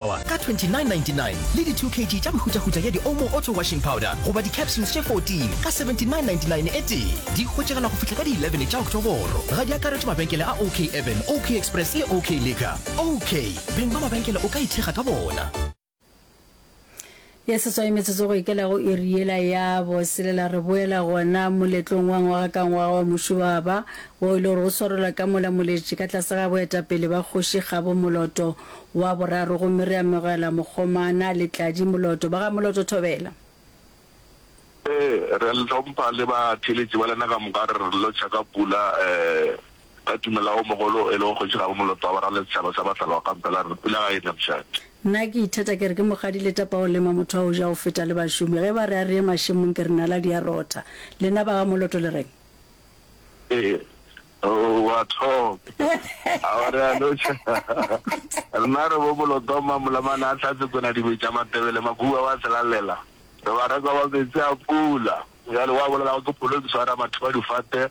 Ka 29.99 le di 2 kg tša mehutahuta ya di-Omo Auto Washing Powder goba di-capsules tše 14 ka 79.99 e tee. Di hwetšagala go fihla ka di 11 tša Oktoboro. Ga di akaretšwe mabenkele a OK Urban, OK Express le OK Liquor. OK! Beng ba mabenkele o ka ithekga ka bona. Ya seswai metsotso go ikela go iri yela ya boselela re boela gona moletlong wa ngwaga ka ngwaga wa Muši wa Ba, wo e le gore o swarelwa ka mola Moletši ka tlase ga boetapele ba Kgoši Kgabo Moloto wa Boraro gomme re amogela Mokgomana le Tladi Moloto ba ga Moloto Thobela. Re a le hlompha le batheeletši ba lena ka moka, re re lotšha ka pula. Ba tumelago mogolo o e lego Kgoši Gabo Moloto wa Barale Setšhaba sa Bahlala wa Kampa la re, Pula ga e ne mošate. Nna ke ithata ke re ke mogadi le tapa o lema motho a o ja o feta le bašomi. Ge ba re a re ye mašemong ke re nala di a rotha. Lena ba ga Moloto le reng? Ee, o a thoma. A o re a loša. Rena re bo Moloto Mmamolamane a hlatse Konadibe tša Matebele Makuba wa Selalela. Re barekwa ba meetse a pula. Bjale wa bolelago ke pholo ke swara batho ba difate.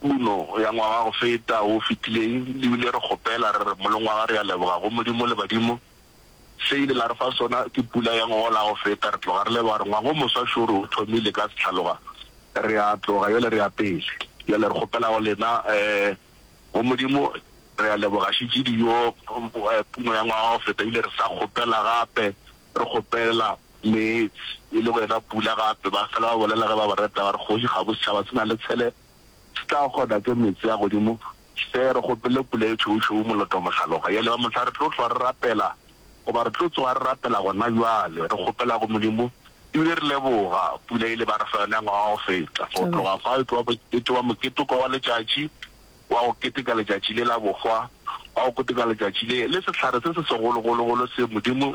Kuno ya ngwaga go feta wo fetileng, le bile re kgopela, re re, Molong wa ga re a leboga go Modimo le badimo, se ile la re fa sona ke pula ya ngogola go feta, re tloga re leboga, re ngwaga o moswa šoro o thomile ka sehlaloga, re a tloga bjale re ya pele, bjale re kgopela go lena, go Modimo, re a leboga šetše dijo, Kuno ya ngwaga go feta, ebile re sa kgopela gape, re kgopela. Meetse, e lego yena Pula gape, ba fela ba bolela ge ba ba reta ba re, Kgoši, ga bosetšhaba se na le tshele se tla kgona ke meetse a godimo se re kgopele pula e tšhoušou moloto mohlaloga. Yale ba mohla re tlo hlwa re rapela, goba re tlo tsoga re rapela gona bjale, re kgopela go Modimo e bile re leboga pula ile ba re fa yona ngwaga o feta. Go tloga fao e tloga mokete wa moketeko wa letšatši wa go keteka letšatši le la bohwa wa go keteka letšatši le le sehlare se se segologologolo se Modimo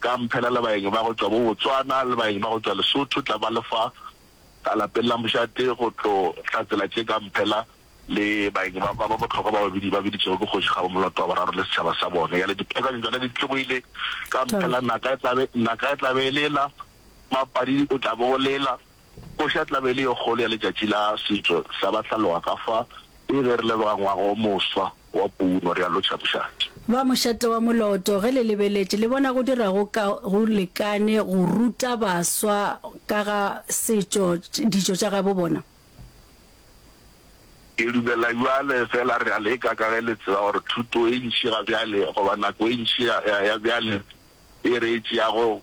ka mphela le baeng ba go tšwa bo Botswana le baeng ba go tšwa Lesotho tla ba lefa ka lapeng la mošate go tlo hlatsela tše ka mphela le baeng ba ba bohlokwa ba babedi ba biditšego ke Kgoši Kgabo Moloto wa Boraro le setšhaba sa bone. Yale dipeakanyo tšona di tlogoile ka mphela naka e tlabe naka e tlabe e lela, Mapadi o tlabe o lela. Kgoši a tla be e le yo kgolo ya letšatši la setšo sa Bahlaloa ka fa e be re leboga ngwaga o moswa wa Puno re a lotšha mošate. Ba mošate wa moloto, ge le lebeletše, le bona go dira go ka go lekane go ruta baswa ka ga setšo, ditšo tša gabo bona? Ke dumela bjale, fela re a leka ka ge le tseba gore thuto e ntši ga bjale goba nako e ntši ya bjale e re e tšeago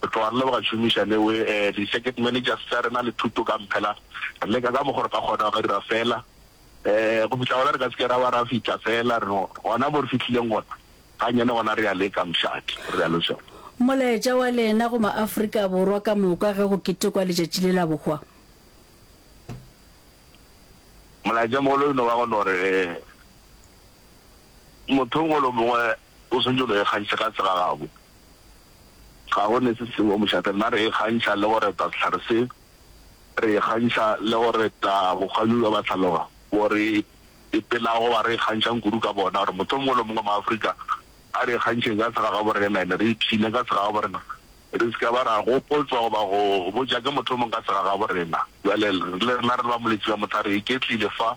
Go tloga re le ba šomiša le we, di circuit managers tša rena le thuto ka mphela, re leka ka mokgo re ka kgonago ra dira fela go fihla gona re ka se ke ra ba ra fihla fela re gona mo re fihlileng gona gannyane gona re ya leka mošate, o realo Sona. Molaetša wa lena go ma-Afrika Borwa ka moka ge go ketekwa letšatši le la bohwa? Molaetša mogolo e no ba go no re motho o mongwe le o mongwe O swanetše go ikgantšha ka tsela gabo. Ga go ne se sengwe mošate. Rena re ikgantšha le go reta sehlare se, re ikgantšha le go reta bokgwanyong bja bahlaloga bo re epelago ba re ikgantšhang kudu ka bona. Gore motho o mongwe le o mongwe wa Maafrika a re ikgantšheng ka tsela gabo rena ene re ipshine ka tsela gabo rena. Re se ka ba ra gopotswa goba go botša ke motho o mongwe ka tsela gabo rena. Bjale le rena re le bamoletši ba mohlare, re iketlile fa.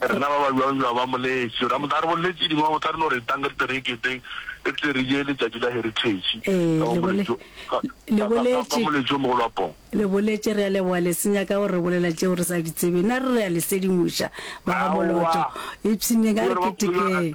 Rena ba ba bjwabjwa ba moletše ra motla re bolle tše dingwe, ba motla re no re etang ka ditereketeng re tle re je letšatši la Heritage ka wa moletšo, ka, ka, ka, ka, ka moletšo o mogolo wa poo. Le boletše, re a leboga le se nyaka go re bolela tšeo re sa di tsebeng, na re re a le sedimoša ba ga Molotšo, ipshinyeng a re ketekeng.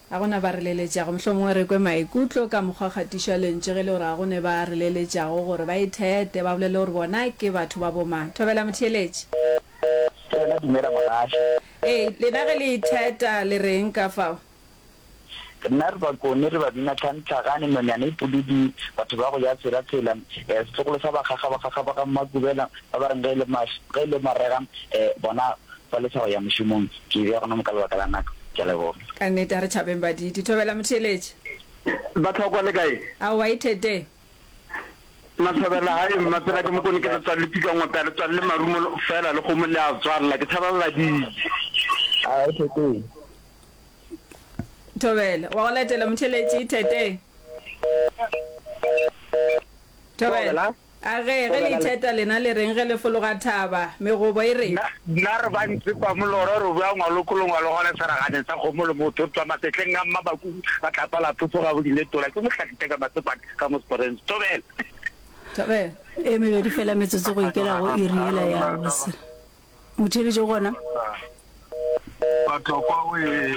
A go na ba releletšago? Mohlomongwe re kwe maikutlo ka mokgwa o kgatišwa lentšu ge e le gore ga go ne ba releletšago gore ba ithete, ba bolele gore bona ke batho ba bomang. Thobela motheeletši. Thobela, dumela mogaši. Ee, lena ge le itheta, le re'ng ka fao? Rena re bakone, re babina Tlhantlhagane, Nonyana e Pududi, Batho ba go ja Tshela Tshela, eh, setlogolo sa bakgakga, bakgakga ba ga Mmakubela, ba ba reng ge e le, ge e le marega, eh, bona Fa le tshaba ya mošomong, ke e beya gona mo ka lebaka la nako. Ke a leboga. Ka nnete, a re tšhabeng baditi. Thobela motheeletši. Bahlokwa le kae? Aowa, ithete. Mathobela, Hai, Mmapela ke Mokone, ke letswalli Pikanngwa pea, letswalli Marumo feela le kgomo le a tswalla. Ke tshaba baditi. Aowa, ithete. Thobela, Wa go latela motheeletši, ithete. Thobela. A ge, ge le itheta lena le reng ge le fologa thaba? Megobo e re. Nna re ba ntse kwa molora re bua ngwalokolong wa logole seraganeng sa kgomo le motho twa masetleng a mmabaku ba tlapa la phopho ga bodile tola ke mohlaki teka matsepang ka mo sporens thobela e mebedi fela metsotso go ikela go iri yela ya bose motheletše gona batokwa o e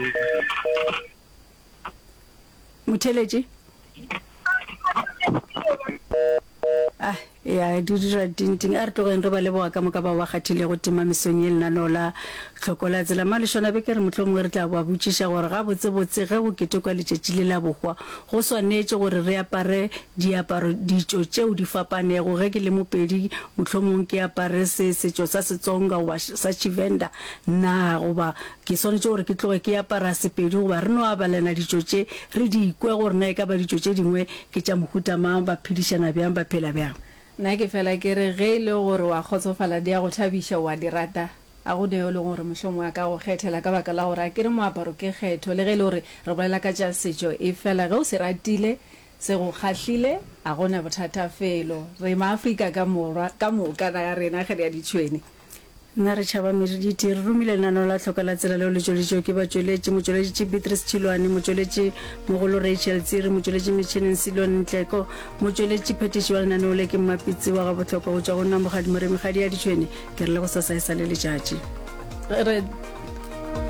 motheletše ah ya di dira tinting a re tlogeng re ba leboga ka moka bao ba kgathilego tima mesong ye lenaneo la tlhoko la tsela malešona be ke re motlho mongwe re tla ba botšiša gore ga botsebotse ge go ketekwa letšatši le la bohwa go swanetše gore re apare diaparo ditšo tšeo di fapanego ge ke le mopedi motlho mongwe ke apare se setšo sa setsonga goba sa chivenda na goba Ke swanetše gore ke tloge ke apara Sepedi goba re no abalena ditšo tše, re di kwe gore na e ka ba ditšo tše dingwe ke tša mohuta mang, ba phedišana bjang, ba phela bjang. Nna ke fela ke re ge e le gore o a kgotsofala di a go thabiša, o a di rata, ga go na yo e lego gore mohlomongwe a ka go kgethela ka baka la gore a ke re moaparo ke kgetho. Le ge e le gore re bolela ka tša setšo, efela ge o se ratile, se go kgahlile, ga go na bothata felo. Re Maafrika ka Morwa ka moka, naga ya rena ge re ya ditšhwene. Na re tšhaba merediti? Re romile lenaneo la Hloka la Tsela leo le tšweleditšwego ke batšweletši, motšweleditši Beatrice Tšhilwane, motšweletši mogolo Rachel Tsiri, motšweletši metšhineng Silon Ntleko, motšweletši phetiši wa lenaneo le ke Mmapitsi wa Gabohlokwa go tšwa go nna Mokgadi Moremi Kgadi ya Ditšhwene. Ke re le go sasa e sa le letšatši. Re.